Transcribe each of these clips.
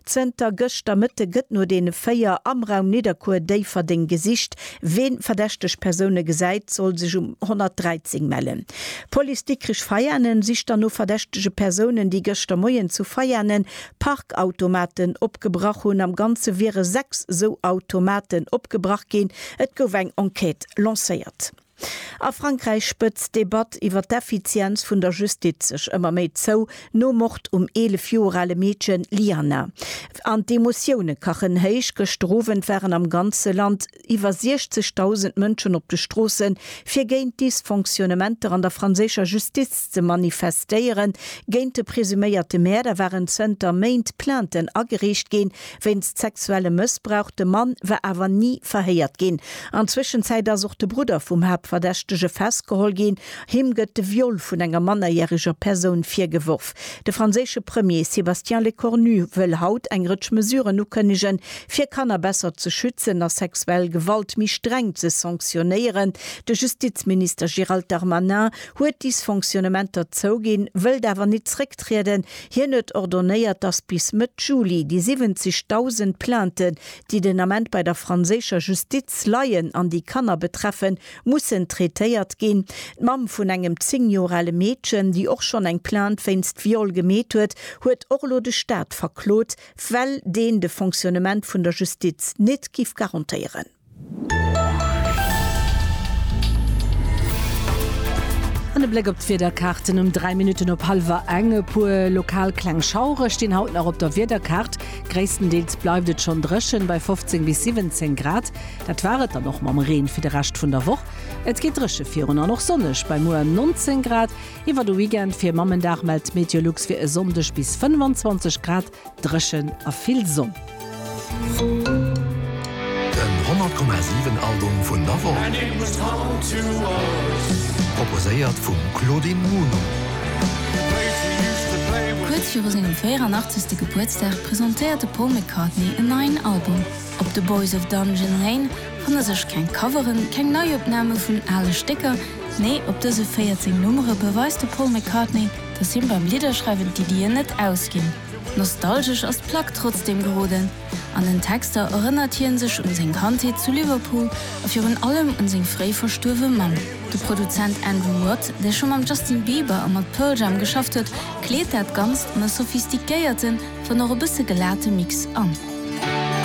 Zënter gëschter Mëtte gëtt no deene véier am Raum Nidderkuer-Déifferdeng gesicht. Ween verdächteg Persoune gesäit, soll sech um 113 mellen. D'Police Dikrich Veianen sicht dann no verdächtege Persounen, déi gëschter Moien zu Veianen Parkautomaten opgebrach hunn. Am Ganze wiere sechs esou Automaten opgebrach ginn. Et gouf eng Enquête lancéiert. A Frankräich spëtzt d'Debatt iwwer d'Effizienz vun der Justiz sech ëmmer méi zou, nom Mord um 11 Joer ale Meedchen Lyana. An d'Emotioune kachen héich, gëschter Owend waren am ganze Land iwwer 60.000 Mënschen op de Stroosse fir géint d'Dysfonctionnementer an der franséischer Justiz ze manifestéieren. Géint de presuméierte Mäerder waren zënter Méint Plainten agereecht ginn, Wéinst sexuellem Mëssbrauch, de Mann war awer ni verhéiert ginn. An Zwëschenzäit ass och de Brudder vum Haaptverdächtege festgeholl ginn. Him gëtt de Viol vun enger mannerjäreger Persoun virgeworf. De franséische Premier Sébastien Lecornu wëll haut eng Rëtsch Mesuren ukënnegen, fir Kanner besser ze schützen a sexuell Gewalt méi streng ze sanktionéieren. De Justizminister Gérald Darmanin huet Dysfonctionnementer zouginn, wëllt awer nit zrécktrieden, Hien huet ordonnéiert, datt bis Mëtt Juli déi 70.000 Plainten, déi den Ament bei der franséischer Justiz leien an déi Kanner betreffen, mussen traitéiert ginn. D'Mamm vun engem 10 Joer ale Meedchen, déi och schonn eng Plainte wéinst Viol gemeet huet, huet och elo de Staat verklot, well deen de Fonctionnement vun der Justiz nit giff garantéieren. An e Bléck op d'Wiederkaarten um 3 Minutten op hallwer eng. E puer lokal kleng Schauere stinn haut nach op der Wiederkaart. Gréisstendeels bleift et schonn dréchen, bei 15 bis 17 Grad. Dat war et dann och mam Reen fir de Rescht vun der Woch. Et geet dréche virun an och sonneg bei muer 19 Grad. Iwwer de Weekend fir Mammendag mellt Meteolux fir e Sonndeg bis 25 Grad. Dréchen a vill Sonn. Den 100,7 Album vun der Woch. Proposéiert vum Claudine Muno. Kuerz viru sengem 84. Gebuertsdag presentéiert de Paul McCartney en neien Album. Op The Boys of Dungeon Lane fanne sech keng Coveren, keng Neiopname vun ale Stécker, nee, op dëse 14 Nummere beweist de Paul McCartney, dass him beim Lidderschreiwen d'Iddien net ausginn. Nostalgesch ass d'Plack trotzdeem geroden. An den Texter erënnert hien sech un seng Kandheet zu Liverpool a virun allem un seng fréi verstuerwe Mamm. De Produzent Andrew Watt, dee scho mam Justin Bieber a mat Pearl Jam geschafft huet, kleet dat Ganzt an e sophistiquéierten, Dann och e bësse gelate Mix an.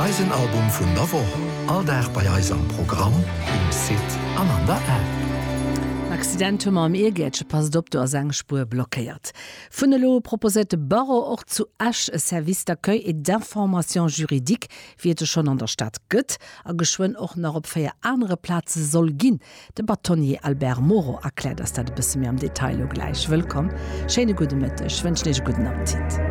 Eisen Album vun der Woch, all Dag bei eis am Programm, um Site an an der App. En Accident hu mer am Iergäertche, passt op, do ass eng Spuer blockéiert. Vun elo u proposéiert de Barreau och zu Esch e Service d'accueil et d'information juridique, wéi et e schonn an der Stad gëtt a geschwënn och nach op véier anere Plaze soll ginn. De Bâtonnier Albert Moreau erkläert eis dat e bësse méi am Detail elo gläich. Wëllkomm, schéine gudde Mëtteg, wënschen Iech e gudden Appetit.